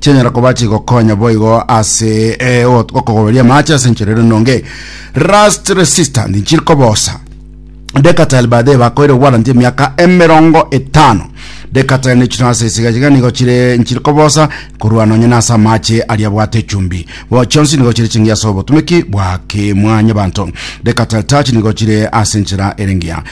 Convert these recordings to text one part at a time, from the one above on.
chianyara koba chigokonya boigo ase eh, ot- okogoberia amache ase enchera ere nonge rust resistant nchiri kobosa Decatel baadaye bakoire warranty emiaka emerongo etano Decatel ne chino ase esiga chiga nigo chire nchiri kobosa korwa nonye na ase amache aria bwate chumbi bo chionsi nigo chire chingiya ase obotumiki bwa kimwanya banto Decatel touch nigo chire ase enchera erengiya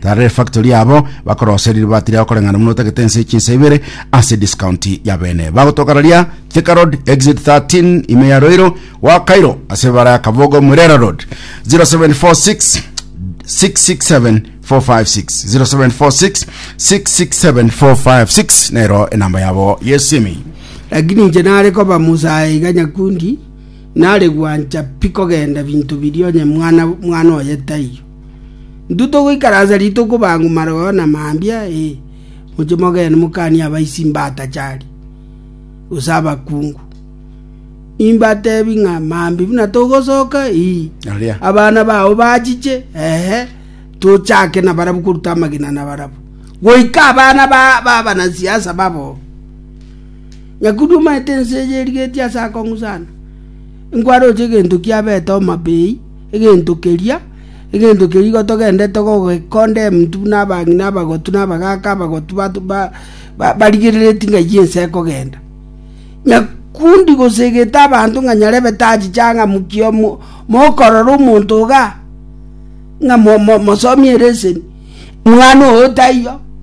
Tara efactory yabo bakoroseri ribati riao koreng'ana buna otagete ense chinsa ibere ase discount ya bene bagotoka raria Thika Road exit 13 ime ya Roiro wa Cairo ase ebara ya Kabogo Mwerera Road 0746 667 456 0746 667 456 nero enamba yabo yesimi Lakini inche nare koba musae iga nyakundi, nare gwancha pi kogenda binto biria onye mwana mwana oye taiyo. Intwe togoikaransa rituko bang'u mareo na mambia, ee, mochie mogende mokanie abaisi mbatachari, gose abakungu. Nimbatebi ng'a mambia buna togosoka, ee, Aria. abana bao bachiche, ehe, tochake na barabwo koruta amagena na barabwo. Goika abana ba ba banasiasa babo. Nyakundi omanyete ense eye erigetie ase akong'u sana. Nkware oche egento kiabete Homa Bay, Egento keria, egento keria igo togenderete kogekondemn buna abang'ina abagotu na abagaaka abagotu barigereretie ng'a eyio ense ekogenda. Nyakundi gose egete abanto ng'a nyarebe tachichang'amukia mokorora omonto igaa, ng'a mosomi ereseni, mwana oyo taiyo.